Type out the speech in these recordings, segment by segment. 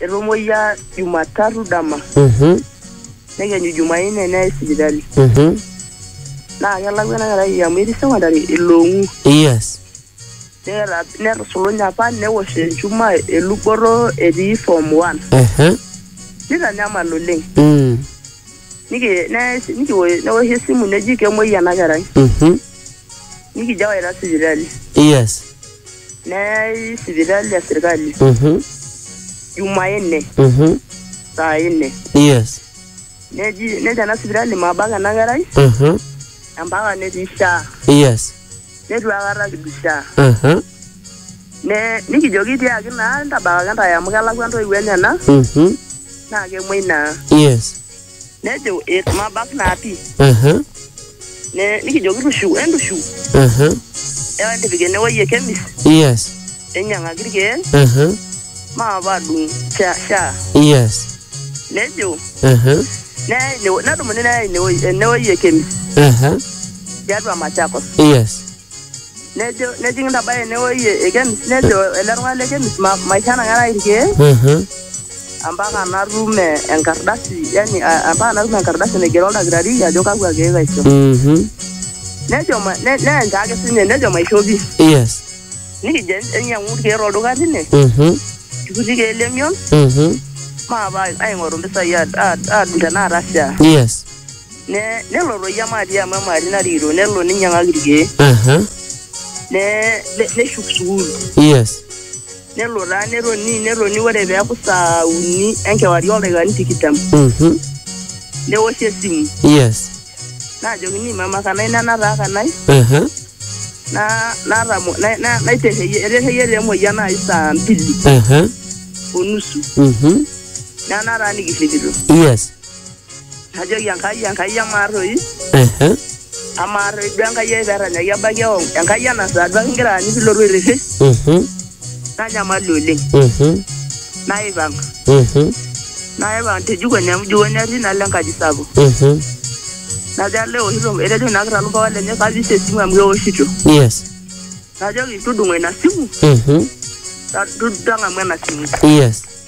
Etomoyia Jumatatu dama Mhm, nekenyu Jumanne neyai sipitali mhm. naa kelakwa ena kerai amu etii sekondari iloong'u Yes. neeta netusulunye apa newosh enchuma eluboto etii form one Ehe. nitanyamal oleng Mm. Niki- ne- nikiwo- newoshi esimu neji kemuoi ena kerai Mhm. nikijo awaita sipitali yes neyai sipitali ya serikali mhm jumanne mhm saa nne yes neji nejo ena sipitali mabak ena kerai mhm empaka netii shaa yes netu akata kidu shaa mhm ne nikijoki tiaki naa ntabakaki ntae amu kelakwa ntoiwuo enyena mhm naa kemuoi naa yes nejo "Eh, mabak naa pii Aha, Ne- nikijoki tushu entushu aha, ewa entipik enewueji e kemis yes, enyiang'aki irkeek aha, maape adung sha sha yes, nejo aha, neya ine- nedumuni neya inewueji enewueji e kemis aha, tiatua machakos yes. nejo nejing intabaya enewueji e kemis nejo ele tung'ani le kemis "Ma- maisho enang'araki irkeek Mhm. ampaka natum eh, enkardasi yani a- ampaka natum enkardasi naigero oldakitari ajo kakwa keek aisho Mhm. nejo ma- ne- neenja ake sinye nejo maisho pi Yes. nikijo enyiang'u irkeek tolduka tine Mhm. ikuti keek lemion Mhm. maapa aing'oru mpisai ad- ad- adung tenaata shaa Yes. Ne- nelo toi emaati amu emaati narikito nelo ninyiang'aki irkeek Aha. ne- ne- neshuk sukuul Yes. nelo taa netoni netoni ore peeku saa uni enkewarie oldaikani tikitam Mhm. newoshi esimu Yes. naajokini mama kanai nena taa kanai Aha. na- natamo- na- na- naiterreyie eterreyie taa emoyian nai saa mbili Aha. onusu Mhm. naa nataa nikirripito Yes. Najoki Enkai, Enkai amaa toi, Ehe. amaa toi duo Enkai ai perranyaki ebaiki eong, Enkai ena saa duo ake igira aanyu pilotu airrishi, Mhm. nanyamalu oleng. Mhm. Naipang, Mhm. naipang te jikoni amu jikoni atii nalo enkaji sapuk. Mhm. Najo alo eoshito, etejo ina kira lumpapa lenye kapik esimu amu keoshito. Yes. Najoki tudung'o ina simu, Mhm. ta- tu- tang'amu ena simu. Yes.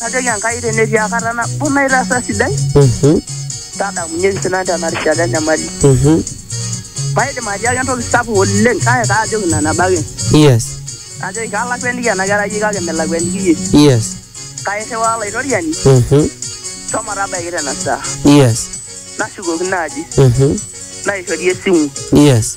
Najoki Enkai tenetii akata nabo naitaasa sidai, Mhm, tadamunyeki sinan tena rishata enyamali. mhm. Maidim atiaaki entoki sapuk oleng kake kaajoki ina nabo ake. Yes, Kajoki kalakuaniki ena kerai iyie kake milakuaniki iyie. yes. Kairriwaa Olaitoriani Mhm, shomo tabaiki tena saa. yes. Nashukokino aji, Mhm, naishori esimu. yes.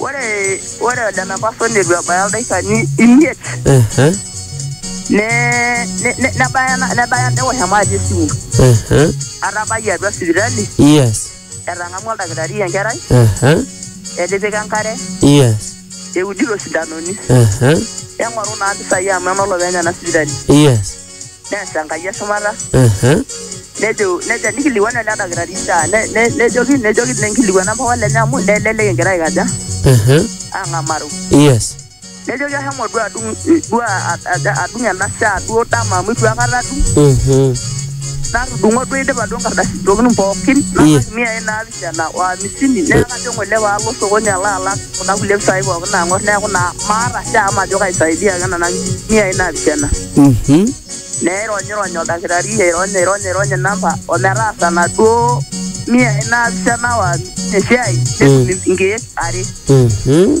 Ore ore ole mepaso neitu ebaya ildaikani imiet Ehe, ne ne- ne- nebaya ena- nebaya newosh emaati esimu. ehe, Atabayie atua sipitali, yes, etang'amua oldakitari enkerai, ehe, etipika enkare, yes, eudito sindanoni. ehe, Eng'oru naa mpisai amu enolopeny ena sipitali. yes. neas Enkai eshumata Ehe. nejo nejo nikilikuanu ele dakitari saa ne- ne- nejoki nejoki ninkilikuanu ampapa lenye amu nelelek egira aikaja Ehe. ang'amaru Yes. nejoki ahomo duo adung duo a- a- adung ena saa duo dama amu itu akata adung Mhm. natudung'o duo idipa duo nkardasini pookin Iya. nalak miai naapishana Tena o amisini neeku kajo ng'ole paalo osokoni alo alak kuna kulie pisai pookin naang'or neeku naa maata shaa majo kaisaidia ake nena miai naapishana. Mhm. Neironyirony oldakitari airony airony airony inamba o metaasa naduo miai naapishana o amisini esiai netum inkeek are. Mhm.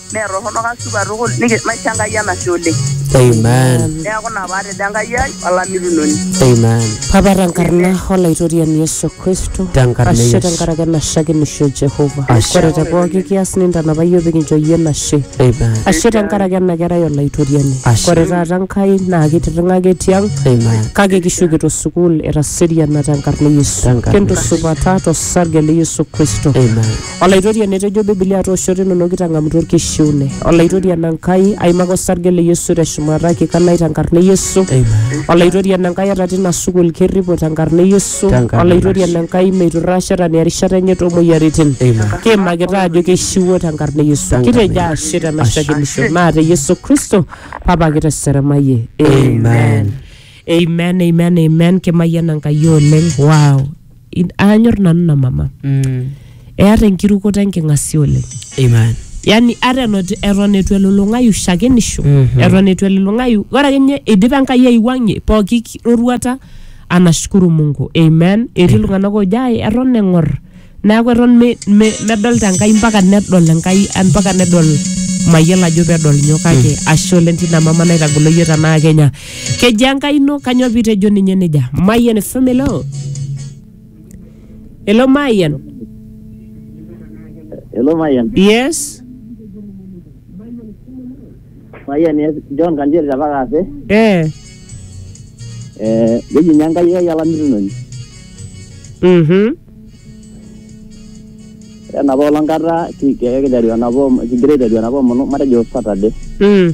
Mee torrono kasupa tukul niki- maisho Enkai enashe oleng. Amen. Neeku ina paatejo Enkai ai olamitunoni. Amen. Papa tenkarna olaitoriani Yesu Kristo. Tenkarna Ashe Yesu. tenkaraki enashakinisho e Jehova. Ashe. Ore te pooki kias nintanapa iyiook pikincho iyie enashe. Amen. Ashe tenkaraki ena kerai olaitoriani. Ashe. Ore taata Enkai naa kitirring'aki etii ang Amen. kake kishukito sukuul etaseriana tenkarna e Yesu. Tenkarna Kintusupata tosarge le Yesu Kristo. Amen. Olaitoriani etejo Bibilia toosho tenono kitang'amutua orkishiune. Olaitoriani Enkai aimaka osarge le Yesu te shumata kikanai tenkarna e Yesu. Olaitoriani Enkai eta tina sukul kerripo tenkarna e Yesu. Tenkarna Olaitoriani Enkai meiturraa shetani erishata enye too moyiaritin. Kiimakita ajo keishiwuo tenkarna e Yesu. Tenkarna Kitejo e ashe tena Ashe. shakenisho naa te Yesu Kristo Papa kiteseremayie. Amen. Amen, amen, amen. Kimayiana Enkai oleng. Wow. in- aanyor nanu ina mama Mm. eata enkirukoto enking'asia oleng Amen. yani ata enot- eton etu elulung'ayu shakenisho Mhm. eton etu elulung'ayu ore ake nye idipa enkai aiwuang'ie pooki ki- roruata anashukuru mungu amen etii iltung'anak oojo ai eton eng'or neeku eton me- me- medolta enkai mpaka nedol enkai ah, mpaka nedol mayiolo ajo pedol nyoo kake ashe oleng tina mama naitagolo yie tenaa kenya Kejaa enkai ino kanyoo pitejo ninye nejia? Mayian FM hello. Hello Mayian. Hello Mayian. Yes. Mayian yes. John Kanjeri tapaka ase. Eh. Eh, keji ninye Enkai ai olamitunoni. Mhm. Ore enapa olong kata ki- ki- kiteru enapa om- kigira aiteru enapa omonu matejo Saturday. Mm.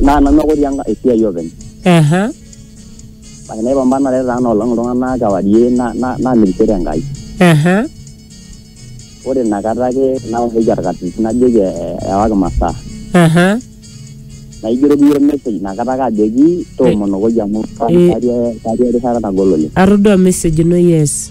naa nanu ake otii enka- esiai openy Aha. kake naipambanare taa nolong iltung'anak kewarie na- na- namirishore enkai Aha. ore inakata ake naoshoki orkatisi najoki eh, ewaki masaa Aha. naigeroki iyie ormesej inakata ake ajoki toomonokoki amu Eh. katii erishata nagol oleng Atodua message ino yes.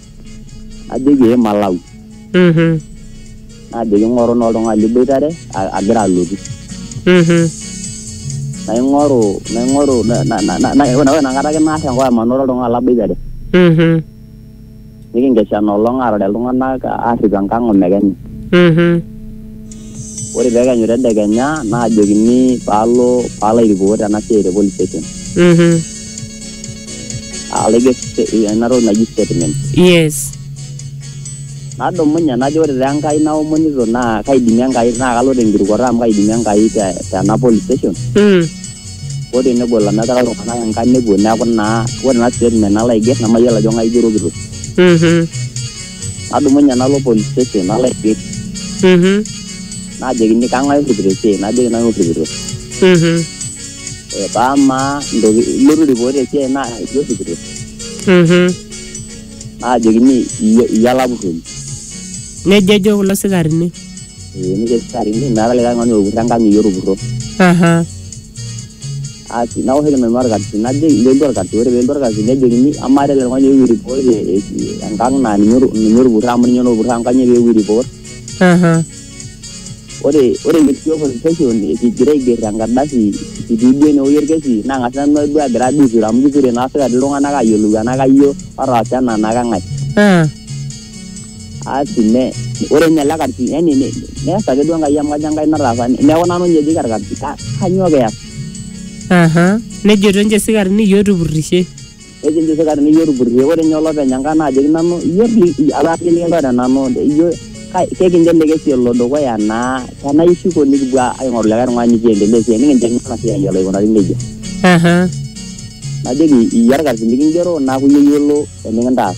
najoki ee malau Mhm. najoki ing'oru naa oltung'ani liboitare a- agira alotu Mhm. naing'oru naing'oru na- na- na- na- na- ore inakata ake naar enkop amanoro oltung'ani laboitare Mhm. nikinkesha ina olong aarare iltung'anak aarrip enkang omekenya Mhm. Ore pee ekenyu tedekenya naajokini paalo paalo airipot ena siai te police station. Mhm. Alo aiger ena toki naji statement. Yes. Nadumunye najo ore taa Enkai naomonito naa kaidimie Enkai naa kalo te nkirukoto amu kaidimie Enkai te tena police station. Mm. Hoo tenegol amu etaa iltung'anak engang' nepuo neeku naa ore ena statement nalo aiger nemayiolo ajo kang'ai aigerokito. Mhm. nadumunye nalo police station nalo aiger Mhm. najokini kang'ae orripito esiai najoki nanu orripito Mhm. Eh, paa amaa ntoki ilotu ripot esiai naa iyie orripito Mhm. najokini iyie iyie olapurroni Nejo ejo kulo sikarini. Eh, nikesitarini meeta likae tung'ani otupurro enkang iyie otupurro Aha. Asi naoshoki nanu orkasi najoki njoki orkasi ore pelotu orkasi nejokini amaa tele tung'ani eewuo report e- e- enkang naa ninye otu- ninye otupurro amu ninye otupurro amu kanyoo peewuo report Aha. ore ore kitii open session kigira aiger enkardasi kitii duo enewueji orkesi nang'as nanu duo agira duo aiture amu kiture naa sipitali iltung'anak ayiolou enaa kayioo otaasa ena enaa keng'ae Ah. asi ne ore ninye ele karsi yani ne- neas ake duo enkai amu kajo enkai nataasa neeku nanu ninye ejoki orkarsi "Ka- kanyoo piyas aha nejoto ninche sikarini iyie otupurrishe nejo ninche sikarini iyie otupurrishe ore ninye olopeny enkai naajoki nanu iyie li- apa iyie likintore nanu iyie kai- kekincho ele kesi elo dukuya naa tenaa ishuko nikipuo aing'oru likae tung'ani nikiendelea esiai nikincho ena siai elo aikunari nejia aha najoki iyie orkarsi likingero naaku iyie oyiolo enikintaas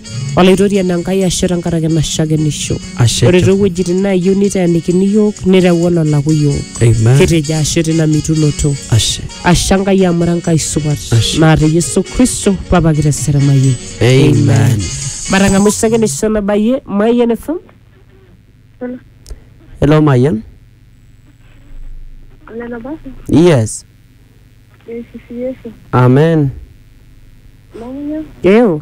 Olaitoriani Enkai ashe tenkaraki ena shakenisho. Ashe Ore te- too wuejitin naayieu niteenikini iyiook nireu ololaku iyiook. Amen. Kitejo ashe tina mitunoto. Ashe. Ashe Enkai amu ira Enkai supat. Ashe. Naa te Yesu Kristo Papa kiteseremayie. Amen. Matang'amu shakenisho nabayie Mayian FM. Hello Mayian. Nena basi, Yes. eisisi Yesu. Amen. Namunyo, Eo.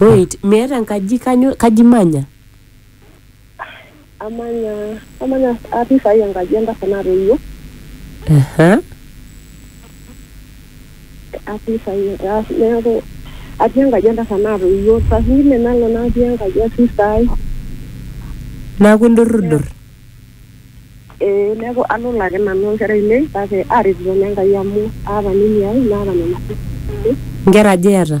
Wait, miata enkaji kanyo kaji imanya? Amanya amanya atii saai enkaji entasat natoiwuo. Aha. Atii saai neeku atii enkaji entasat natoiwuo. Saa zingine nalo natii enkaji e sister ai. Naaku indurrudurr? Ee neeku alolo ake nanu o nkera ainei kake aaretito naa Enkai amu aata nini ai naata nena seseni. Inkera aja iyata?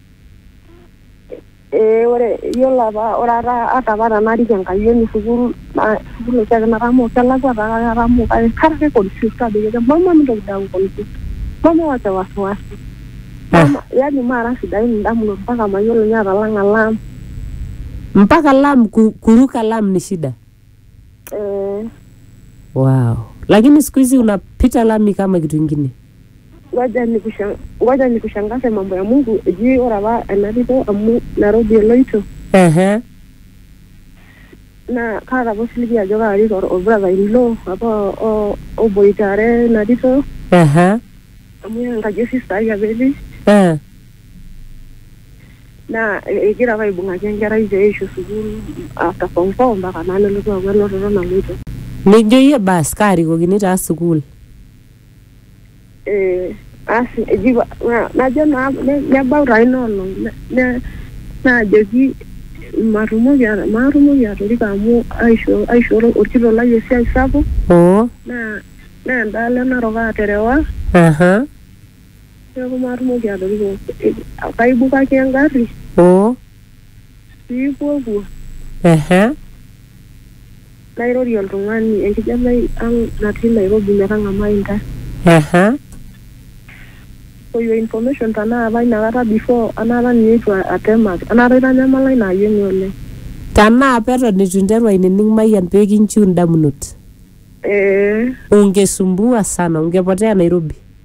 Ee ore yiolo apa ore apa ata apa tenarik enkayioni sukuul naa sukuul oshiake natamoo kelakua taa kake atamoo kake kara ake confused kajoki ake mama mintoki dii aaku confused mama wacha wasiwasi mama yani maara sidain indamunot mpaka mayiolo ninye atalang'a alarm. Mpaka alarm ku kuruka alarm ni shida. Eh, wow. lakini siku hizi unapita lami kama kitu ingine ngoja nikusha- ngoja nikushangaze mambo ya Mungu ejii ore apa enariko amu Nairobi eloito Ehe. naa kaata apa osiligi ajo kaarik or- orbrother in law apa o- o- oboitare narito Ehe. amu enkaji osista ai apa etii Eh. naa egira apa aibung'aki enkerai pee eishu sukuul after form four mpaka naa nelotu aaku enototo naloito. Nijo iyie baas kaarikokini taa sukuul. Eh, asi eji najo naa nebau taa ina olong naajoki matumoki maatumoki atoriko amu aisho aisho orkitok lai esiai sapuk. Oo. Naa naa endaalo e Narok aaterewa. Aha. Neeku maatumoki atoriko eh, kaibukaki engarri oo piipuopuo ehe nairorie oltung'ani enkijanai ang natii Nairobi metang'amai intae. ehe For your information tenaa apa inakata before anaata ninye eitu atemak anaata itanyamala ina ayioni oleng. tenaa apa eton itu interu ainining mayian pekinchiu indamunot Eh, ungisumbua sana ungepotea Nairobi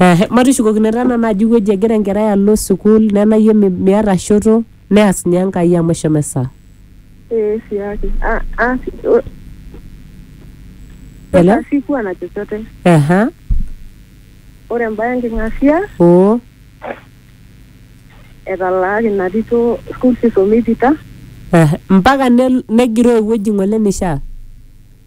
Ehe, matushukokino taa nanu ajo ewueji egira enkerai alo sukuul nena iyie mi- miata shoto neas ninye enkai amu eshomo esaa Eh, siaki. Ah, ah, si- o- Hello? Sasa sikuwa na chochote. Ehe, Ore embae enking'asia oo etalaaki ina tito school fees omeipita. ehe. mpaka nel- negiroo ewueji ng'ole nishaa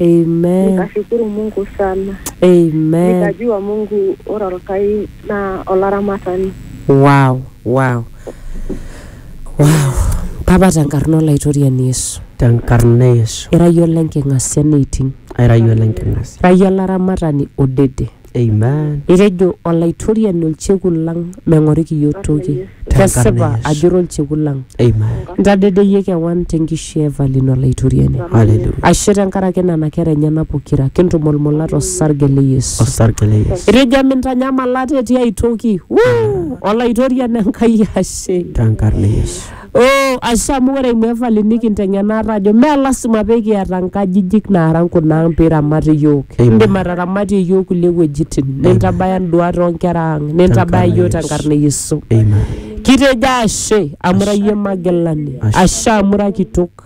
Amen. nikashukuru Mungu sana, Amen. nikajua Mungu ora Olkai naa olaramatani. Wow, wow. Wow. Papa tenkarna olaitoriani Yesu. Tenkarna e Yesu. Ira iyie olenking'asia neiting. Aira iyie olenking'asia. Ira iyie olaramatani odede. Amen. Etejo Olaitoriani olchekut lang meng'ori kiyiok toki. Kesipa Yesu. ajo ira olchekut lang. Amen. Ntadedeyie kewan tenkishui e Evelyn Olaitoriani. Hallelujah. Ashe tenkaraki nena kera enyena pokira, kintumulmula tosarge le Yesu. Osarge le Yesu. Etejo emintanyamal ate tiai toki. Wuu! Olaitoriani Enkai ashe. Tenkarna e Yesu. Oh, ashe amu ore ina evali nikinteng'ena ate ajo mee lasima pee kiata nkajijik naara nkuna ang pee iramat iyiook. Amen. Indim ataramatie iyiook kulie wuejitin, nintabaya nduat oo nkera ang, nintabaya iyiook te nkarna e Yesu. Amen. Kitejo ashe amu ira iyie magilani, Ashe. ashe amu ira kitok.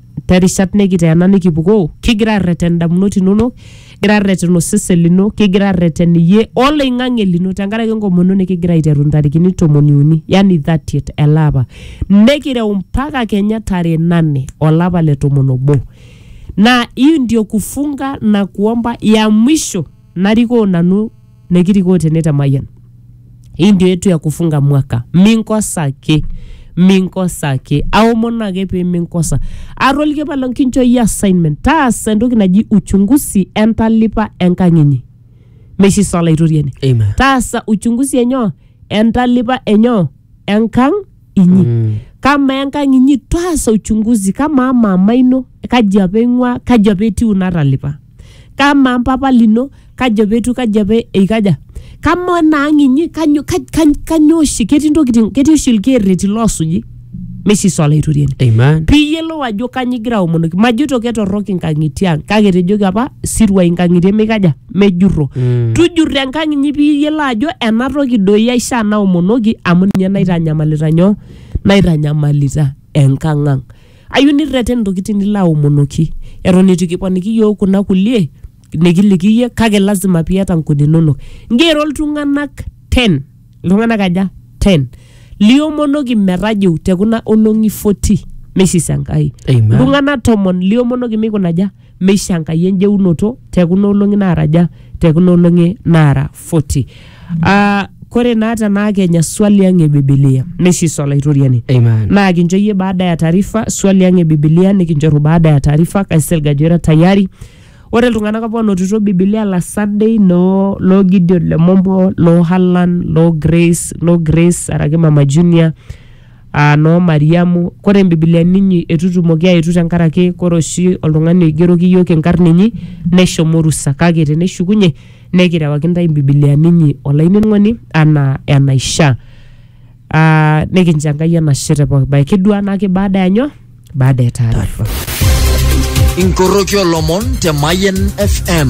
terishat nikiteena nikipukoo kigira arreten indamunot inonok kigira arreten osesen lino kigira arreten iyie oloing'ang'e lino tenkaraki enkomono nikigira aiteru intarikini tomoni uni yani 30 ele apa nikireu mpaka kenya tarehe nane olapa le tomon obo na hii ndio kufunga na kuomba ya mwisho narikoo nanu nekirikoo tene te Mayian. Hii ndio yetu ya kufunga mwaka, minkosa ake minkosa ake aomon ake pee minkosa. Atoliki palo nkincho iyie assignment, taasa entoki naji uchunguzi entalipa enkang inyi meishisa olaitoriani Amen. taasa uchunguzi enyo entalipa enyo enkang inyi Mm. kama enkang inyi taasa uchunguzi kama amama ino kaji apa ing'ua kaji apa etiu natalipa kama mpapa lino kaji apa etiu kaji apa eikaja kama ena ang inyi kanyo kaj- kaj- kanyo oshi ketii ntokitin ketii oshi ilkeerreti loosuji mesis olaitoriani Amen. piiyiolou ajo kanyio igira aomonoki majoito ketorrok inkang'itie ang kake etejoki apa siruai inkang'itie mikaja mejurro Mm. tujurro enkang inyi piyiolo ajo ena toki doi aishaa naomonoki amu ninye naitanyamalita nyoo naitanyamalita enkang ang ayieu nirreten intokitin nilo aomonoki eton eitu kiponiki yiok kuna kulie nikiliki iyie kake lazima piata nkuni inonok ngero iltung'anak ten iltung'anak aja ten liomonoki metajiu tekuna olong'i 40 meishisa enkai Amen. iltung'anak tomon liomonoki meikunaja meisho Enkai enjeunoto te kuna olong'i naaraja te kuna olong'i naara 40. Ah, kore naa tenaa kenya swali ang e Bibilia neisho iso Olaitoriani. Amen. Naa kincho iyie baada ya taarifa swali ang e Bibilia nikinchoru baada ya taarifa kaisilig ajo ira tayari. Ore iltung'anak apa onotito Bibilia la Sunday noo loo Gideon Lemompo, loo Hallan, loo Grace, loo Grace araki Mama Junior, aa noo Mariamu. Kore imbibiliani inyi eitu itumoki aetu tenkaraki kore oshi oltung'ani oigeroki iyiook inkarn inyi neshomo orusa kake teneshukunye nekirewaki intae imbibiliani inyi olainining'oni anaa enaishaa. Aa nikincho Enkai enashe te pooki bae. Kiduaa naake baada ya nyoo? Baada ya taarifa. Inkoroki olomon te Mayian FM.